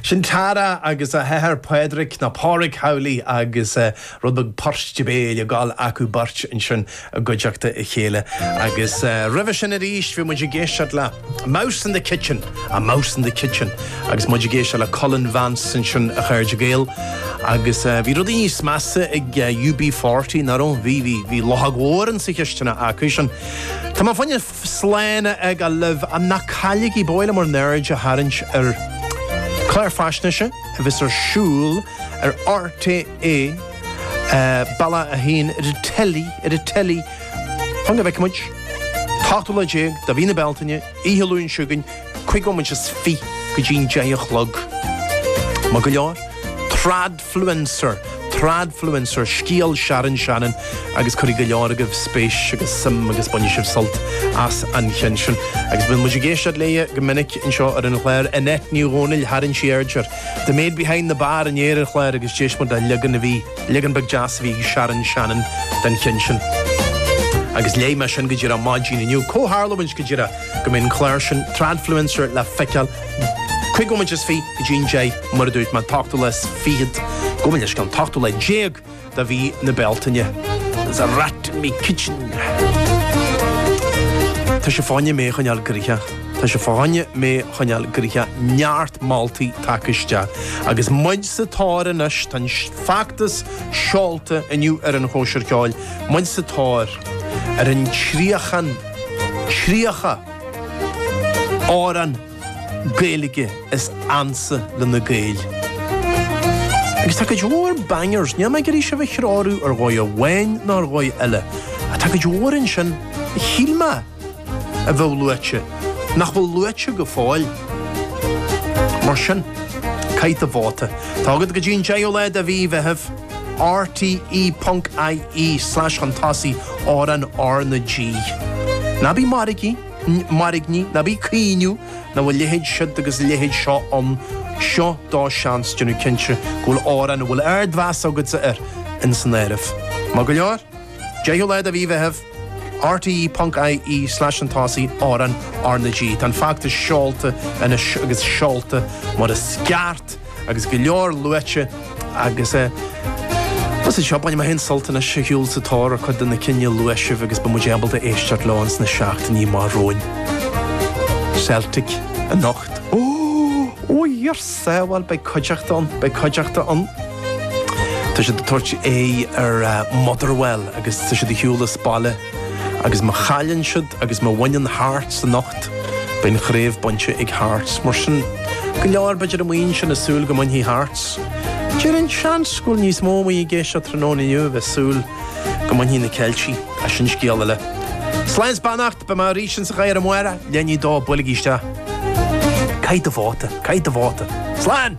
Sin Tara agus a hathair Padraic, nó Pádraig Howley agus rud beag poirt béil ag gabháil acu beirt ansin i gcuideachta a chéile. Agus roimhe sin arís bhí muid ag éisteacht le Mouse in the Kitchen, A Mouse in the Kitchen agus muid ag éisteacht le Cullen Vance ansin, a chairde Gael. Agus bhí rudaí níos measa ag UB40, nach raibh? Bhí, bhí, bhí luchóg mhór insa chisteanach acusan. Tá mé féin. Sláine aga libh! Ach ná cailligí, ba mhaith liom bhur n-aird a tharraingt ar chlár faisnéise a bheas ar siúl ar RTÉ, Bealach a hAon, ar an teilí, ar an teilí, chun go bhfeice muid, an 18ú lá de mhí na Bealtaine, oíche Luain seo chugainn, cúig nóiméad is fiche go dtí an deich a chlog. Maith go leor. Trad. fluencer, Tradfluencer, Scéal Sharon Shannon agus cuirfidh go leor agaibh spéis agus suim agus bainfidh sibh sult as an cheann sin. Agus bíonn muid ag éisteacht léi go minic anseo ar an chlár. Annette Ní Dhomhnaill, tharraing sí aird ar The Maid Behind the Bar inné ar an chlár agus d'éist muid le leagan a bhí, leagan beag deas a bhí ag Sharon Shannon den cheann sin. Agus léigh mé sin go díreach maidin inniu. Comhtharlúint go díreach go mbeidh an clár sin, Tradfluencer, le feiceáil Cúig nóiméad is fiche go dtí an deich, mar a dúirt mé, an t-ochtú lá is fichead, gabh mo leithscéal, an t-ochtú lá déag de mhí na Bealtaine. There's a rat in me kitchen. Tá sé fá choinne mé a choinneáil gnoitheach. Tá sé fá choinne mé a choinneáil gnoitheach, neart moltaí tagtha isteach. Agus muid sa tóir anois, tá an feachtas seolta inniu ar an chóisir cheoil, muid sa tóir ar an tríocha, tríocha! Amhrán Gaeilge is ansa le na Gaeil. Agus tá cuid mhór bangers, níl mé ag iarraidh sibh a threorú ar dhóigh amháin nó ar dhóigh eile, ach tá cuid mhór ansin a shíl mé a bheadh luaite, nach bhfuil luaite go fóill. Mar sin, caith do vóta. Tá agat go dtí an 10ú lá de mhí Mheithimh. RTE.IE/chun tosaigh amhrán RnaG. Ná bí ag mairgní, ná bí ag caoineadh nach bhfuil a leithéid siúd agus a leithéid seo ann, seo do sheans, déanamh cinnte go bhfuil amhrán a bhfuil ardmheas agatsa air ins an áireamh. Maith go leor? Deichiú lá de mhí Mheithimh, RTÉ.ie/anTosaí, Árainn, RnaG. Tá an feachtas seolta anois agus seolta mar is ceart agus go leor luaite agus eh Más é seo, bainfidh mé féin sult anois as a ghabháil sa tóir ar chuid de na cinn a luaigh sibh agus beidh muid ábalta éisteacht leo ins na seachtainí amach romhainn. Celtic anocht. Ó! Ó! Iar! Sea, bhuel, beidh cuideachta ann, beidh cuideachta ann. Tá siad ag tabhairt aghaidh ar Motherwell agus tá siad ar shiúl as baile agus má chailleann siad agus má bhaineann Hearts anocht, beidh an chraobh bainte ag Hearts. Mar sin, go leor, b'fhéidir, amuigh ansin ag súil go mbainfidh Hearts. Déarfainn, seans, go bhfuil níos mó amuigh ag éisteacht tráthnóna inniu a bheidh ag súil go mbainfidh na Ceiltigh, ach scéal eile. Slán 's beannacht! Beidh mé arís ins an gheimhreadh, a Mháire! Lean í dó, buailigí isteach. Caith do vóta! Caith do vóta! Slán!